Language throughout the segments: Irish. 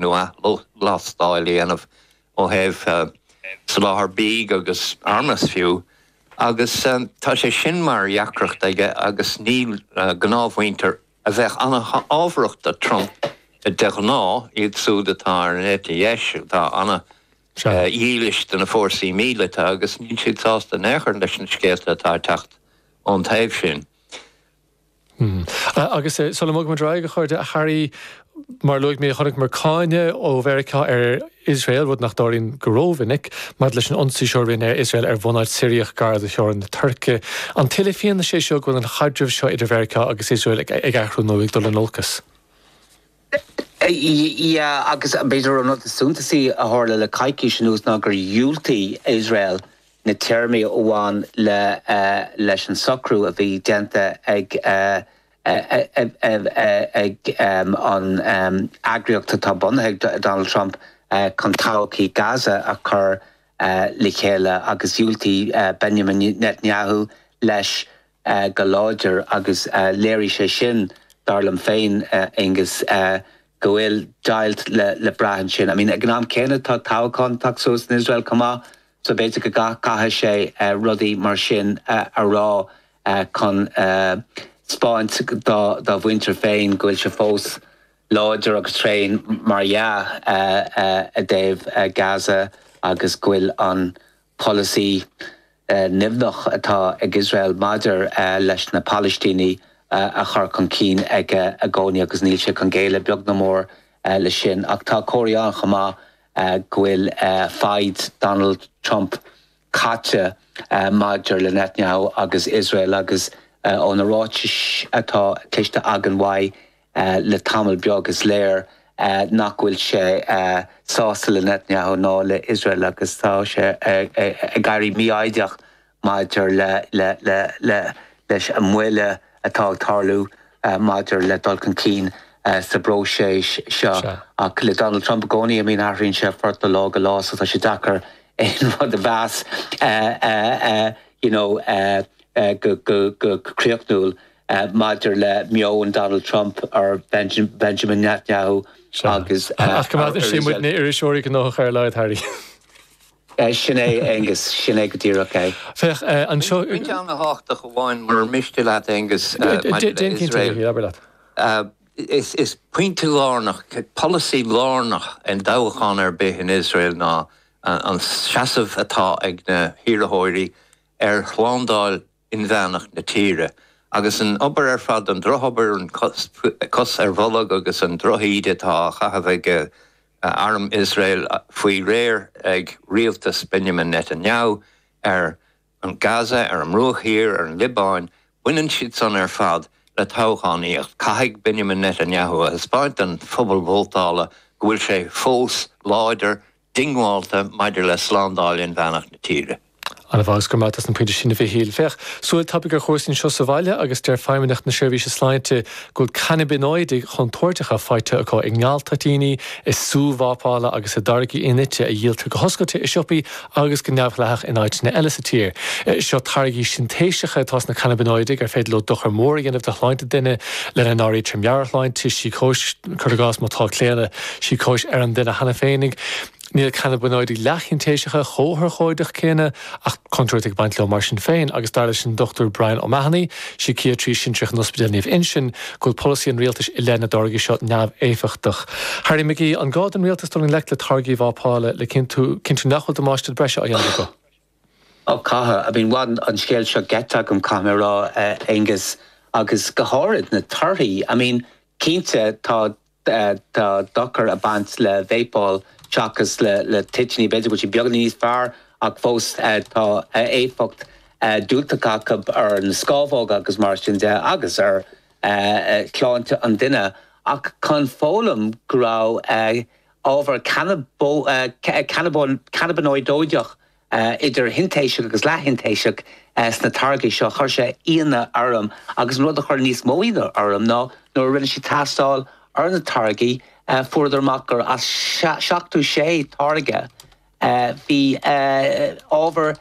nó athlastáil a dhéanamh ó thaobh soláthar bídh agus armas fiú, agus tá sé sin mar dheacracht aige agus níl gnáthmhuintir a bheadh an-fhabhrach do Trump de ghnáth, iad súd atá ar an eite dheis, atá an-dhílis do na fórsaí míleata agus níl siad sásta in aon chor leis na scéalta atá ag teacht ón taobh sin. Agus sula mbogfaidh muid ar aghaidh, chuig Qatar, a Harry, mar a luaigh mé, chonaiceamar cáineadh ó Mheiriceá ar Iosrael, rud nach dtarlaíonn go rómhinic, maidir leis an ionsaí seo a rinne Iosrael ar bhunáit Siriach gar do theorainn na Tuirce. An léiríonn sé seo go bhfuil an chaidreamh seo idir Mheiriceá agus Iosrael ag athrú nó ag dul in olcas? Yeah, agus b'fhéidir an rud is suntasaí a tharla le coicís anuas ná gur dhiúltaigh Iosrael na téarmaí a bhain leis an socrú a bhí déanta ag an eagraíocht atá bunaithe ag Donald Trump chun todhchaí Gaza a chur le chéile agus dhiúltaigh Benjamin Netanyahu leis. go láidir agus léirigh sé sin, dar liom féin, Aengus, go bhfuil deighilt le brath ansin. I mean, ag an am céanna, tá toghchán ag teacht suas in Iosrael chomh maith, so b'fhéidir go gcaithfidh sé rudaí mar sin a rá chun 'spáint dá mhuintir féin go bhfuil sé fós láidir agus tréan, mar dhea, i dtaobh Gaza agus go bhfuil an. polasaí nimhneach atá ag Iosrael maidir leis na Palaistínigh á chur chun cinn aige i gcónaí agus níl sé chun géilleadh, beag ná mór, leis sin. Ach tá comharthaí ann chomh maith go bhfuil foighid Donald Trump caite maidir le Netanyahu agus Iosrael agus ó na ráitis atá cloiste againn uaidh, Le tamall beag, is léir nach bhfuil sé sásta le Netanyahu ná le Iosrael agus tá sé ag éirí mífhoighdeach maidir leis an moill atá ag tarlú maidir le dul chun cinn sa bpróiseas seo. Ach le Donald Trump i gcónaí, athraíonn sé a phort ó lá go lá so tá sé deacair aon rud a mheas go críochnúil. maidir le meon Donald Trump ar Benjamin Netanyahu agus ar a rialtas. Sin é, Aengus, sin é go díreach é. Pointe an-tábhachtach amháin, murar miste leat, Aengus, maidir le Iosrael. Is pointe lárnach, polasaí lárnach i dtoghchán ar bith in Iosrael ná an seasamh atá ag na hiarrthóirí ar shlándáil inmheánach na tíre. Agus an obair ar fad, an drochobair, an chos ar bolg agus an drochíde atá á chaitheamh ag arm Iosrael faoi réir ag rialtas Benjamin Netanyahu ar Gaza, ar an mBruach Thiar, ar an Liobáin, baineann siad san ar fad le toghchánaíocht. Caithfidh Benjamin Netanyahu a thaispeáint don phobal vótála go bhfuil sé fós láidir, diongbháilte maidir le slándáil inmheánach na tíre. Ana-mhaith agus go raibh maith agat dos na pointí sin, a Mhichíl. Féach, súil tapaidh ar chúrsaí anseo sa bhaile agus deir Feidhmeannacht na Seirbhíse Sláinte go bhfuil cannabinoidigh chontúirteacha faighte acu i ngaltoitíní, i sú vápála agus i dtáirgí in-ite a dhíoltar go hoscailte i siopaí agus go neamhdhleathach in áiteanna eile sa tír. Seo táirgí sintéiseacha atá sna cannabinoidigh ar féidir leo dochar mór a dhéanamh do shláinte duine, lena n-áirítear meabhairshláinte, síocóis, cur i gcás, má tá claonadh. Síocóis ar an duine cheana féinig. Níl cannabinoidigh leathshintéiseacha chomh hurchóideach céanna, ach tá contúirt ag baint leo mar sin féin, agus dar leis an Dr Brian O'Mahony, Síciatraí Sinsearach in Ospidéal Naomh Uinseann, go bhfuil polasaí an rialtais i leith na dtáirgí seo neamhéifeachtach. Harry McGee, An gá don rialtas dul i ngleic le táirgí vápála le cinnt cinntiú nach bhfuil damáiste breise á dhéanamh acu? Ó, caithfidh. I mean, bhain an scéal seo geit agam, caithfidh mé a rá, a Aonghus, agus go háirid na torthaí. I mean, cinnte, tá. Tá dochar ag baint le vápáil seachas le toitiní. B'fhéidir go bhfuil siad beagáinín níos fearr ach fós tá éifeacht diúltach acu ar na scámhóga agus mar sin de agus ar shláinte an duine. Ach chun foghlaim go raibh ábhar canabó cab cannabanóideach idir shintéiseach agus leath-shintéiseach, sna táirgí seo. Chuir sé ionadh orm, agus an rud a chuir níos mó ionadh orm ná nuair a rinne siad tástáil ar na táirgí, fuaireadar amach gur as seachtú sé táirge, bhí ábhar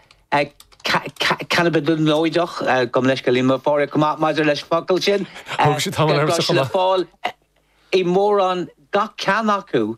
cannabadonóideach, gabh mo leithscéal, níl mé chomh maith maidir leis an bhfocal sin, le fáil i mórán gach ceann acu.